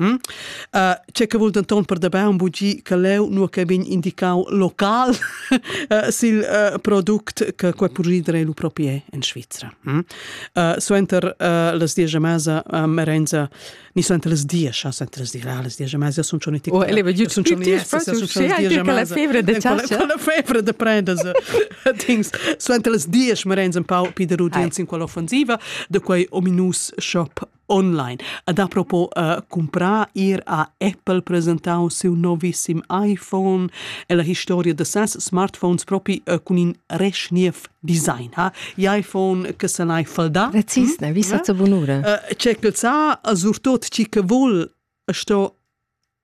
Mm? Uh, c'è che vul denton per da baun bugi che leu nu che vegn indicau local uh, sil uh, product che quei purrir lu proprier in Svizzera. Mm? Uh, suenter uh, las dies a mesa uh, merenza ni suenter las dies, ja, suenter las dies, ja, las dies a mesa sun schon nicht. Oh, ele va giù tutti la febra de ciascia. Quella febra de prendas things. Suenter las dies merenza un pau piderudien in quella offensiva de quei ominus shop online. Ed apropos uh, cumprar, ir a Apple presentau siu novissim iPhone e la historia de ses smartphones propi uh, cun in resch niev design. Ha? iPhone che se n'hai falda. Precis, ne, vi sa bunura. Uh, c'è che sa, surtut chi che vuol sto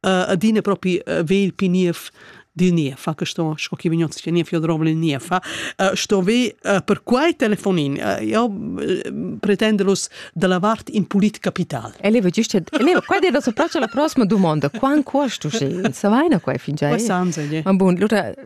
uh, adina propi uh, ve il pi niev dil niev, che sto, sco chi vignot sia niev, io drovo il niev, uh, sto ve uh, per quai telefonin, uh, io uh, pretenderus da la vart in pulit capital. Eleva, giusto, eleva, qua è da sopraccio la prossima domanda, quant costo, se, sa vaina qua fingià? Questo anzi, yeah. Ma bun, allora,